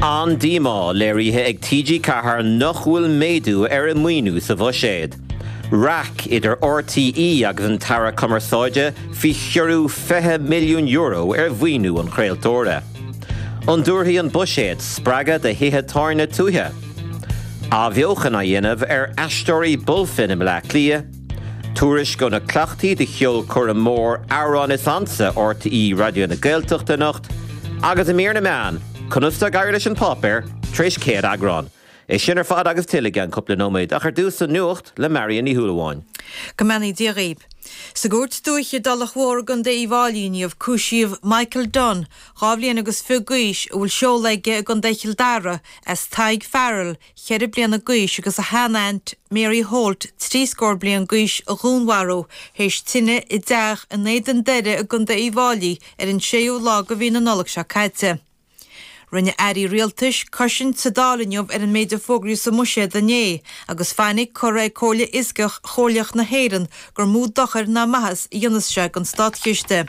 An-díomá léirithe ag TG4 nach bhfuil méadú ar a maoiniú sa Bhuiséad. Raic idir RTÉ agus an tAire Cumarsáide faoi chiorrú €20 milliún ar mhaoiniú an chraoltóra. An dtabharfaidh an Buiséad spreagadh do thithe tábhairne tuaithe? Athbheochan á dhéanamh ar aisteoirí Bulfin i mBleá Cliath? Tuairisc ó na cleachtaí do cheolchoirm mhór Amhrán is Ansa RTÉ Raidió na Gaeltachta anocht agus i mír na meán, conas tá ag éirí leis An Páipéar tar éis 100 eagrán. É sin ar fad agus tuilleadh i gceann cúpla nóiméad ach ar dtús an Nuacht le Marion Ní Shúilleabháin. Go mbeannaí Dia dhaoib. Sa gCúirt Dúiche i dTulach Mhór i gContae Uíbh Fháilí inniu cúisíodh Michael Dunne, dhá bhliain agus fiche d'aois, a bhfuil seoladh aige i gContae Chill Dara as Tadhg Farrell, cheithre bliana d'aois agus a shean-aint Mary Holt trí scór bliain d'aois a dhúnmharú théis tine i dteach in Éadan Doire i gContae Uíbh Fháilí ar an 6ú lá de mhí na Nollag seo caite. Rinne Airí Rialtais cosaint sa Dáil inniu ar an méid a fógraíodh sa mBuiséad inné agus fainic curtha ag Comhairle Fhioscach Chomhairleach na hÉireann gur mó dochar ná maitheas a dhéanfas sé don Státchiste.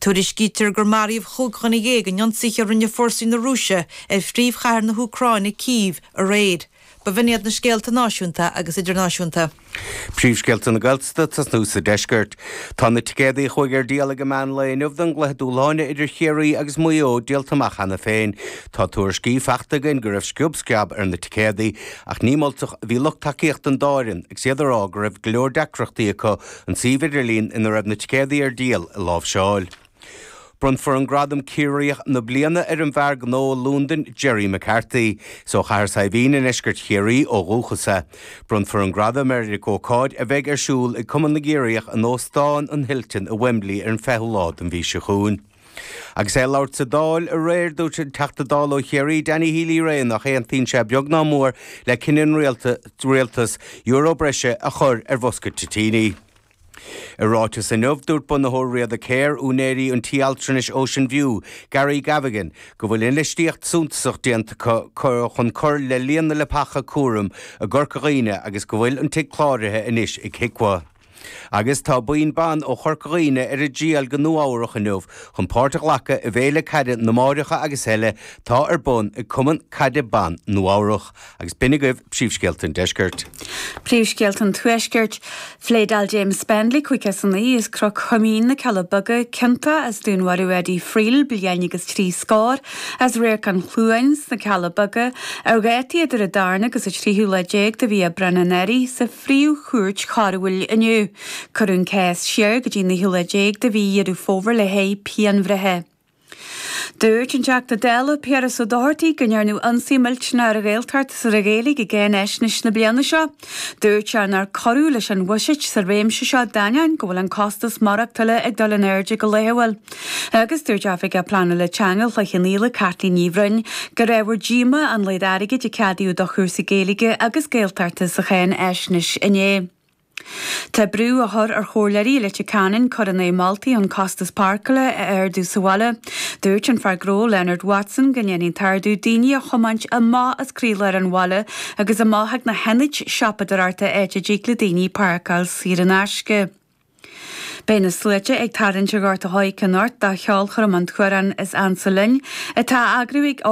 Tuairiscítear gur maraíodh chúig dhuine dhéag in ionsaithe a rinne fórsaí na Rúise ar phríomhchathair na hÚcráine, Cív, aréir. B'in iad na scéalta náisiúnta agus idirnáisiúnta. Príomhscéalta na Gaeltachta tosnú sa deisceart. Tá na ticéadaí a chuaigh ar díol ag an meán lae inniu don gcluiche dúshláin idir Ciarraí agus Maigh Eo díolta amach cheana féin. Tá tuairiscí fachta againn go raibh sciob sceab ar na ticéadaí ach ní moltach a bhí lucht tacaíochta an dá fhoireann agus iad ag rá go raibh go leor deacrachtaí acu An suíomh idirlín ina raibh na ticéadaí ar díol a láimhseáil. Bronnfar an gradam 'Ciarraíoch na Bliana' ar an bhfear gnó i Lúndain, Jerry McCarthy. Is ó Chathair Saidhbhín i ndeisceart Chiarraí ó dhúchas é. Bronnfar an gradam air ag ócáid a bheidh ar siúl ag Cumann na gCiarraíoch in Óstán an Hilton i Wembley ar an 20ú lá den mhí seo chugainn. Agus é ag labhairt sa Dáil aréir, dúirt an Teachta Dála ó Chiarraí, Danny Healy-Rae nach aontaíonn sé beag ná mór le cinneadh an Rialtais euro breise a chur ar bhosca toitíní. I ráiteas inniu, dúirt bunaitheoir Riada Care, úinéirí an tí altranais Ocean View, Gary Gavigan, go bhfuil infheistíocht suntasach déanta acu chun cur le líon na leapacha cúraim i gCorca Dhuibhne agus go bhfuil an tigh cláraithe anois ag HIQA. Agus tá buíon ban ó Chorca Dhuibhne ar a dtriall go Nua Eabhrach inniu chun páirt a ghlacadh i bhFéile Caide na Máithreacha agus Eile tá ar bun ag Cumann Caide Ban Nua Eabhrach. Agus b'in agaibh príomhscéalta an deiscirt. Príomhscéalta an Tuaiscirt. Phléadáil James Spendley, cúig is daichead as Cró Chuimín, na Cealla Beaga, ciontach as dúnmharú Eddie Friel, bliain agus trí scór, as Radharc an Chluain sna Cealla Beaga, ar dhátaí idir a darna agus a tríú lá déag de mhí Aibreáin anuraidh. Phríomh-Chúirt Choiriúil inniu. Cuireadh an cás siar go dtí an naoú lá déag de mhí Dheireadh Fómhair le haghaidh pianbhreithe. Dúirt an Teachta Dála Piaras Ó Dochartaigh go ndearnadh ionsaí millteanach ar an Ghaeltacht is ar an Ghaeilge i gcáinaisnéis na bliana seo. Dúirt sé nár cuireadh leis an bhuiséad sa réimse seo d'ainneoin go bhfuil an costas maireachtála ag dul in airde go laethúil. Agus dúirt Oifigeach Pleanála Teanga Chloich Chionnaola, Caitlín Ní Bhroin, gur ábhar díoma an méad airgid a ceadaíodh do chúrsaí Gaeilge agus Gaeltachta sa cháinfhaisnéis inné. Tá brú á chur ar chomhairleoirí i Leitir Ceanainn cur in aghaidh moltaí chun costas páirceála a ardú sa bhaile. Dúirt an fear gnó Leonard Watson go ndéanfaidh an t-ardú daoine a chomáint amach as croílár an bhaile agus amach ag na hionaid siopadóireachta áit a dtig le daoine páirceáil saor in aisce. Beidh na sluaite ag tarraingt ag Gort an Choirce anocht do cheolchoirm An tAmhrán is Ansa Linn, atá a eagrú ag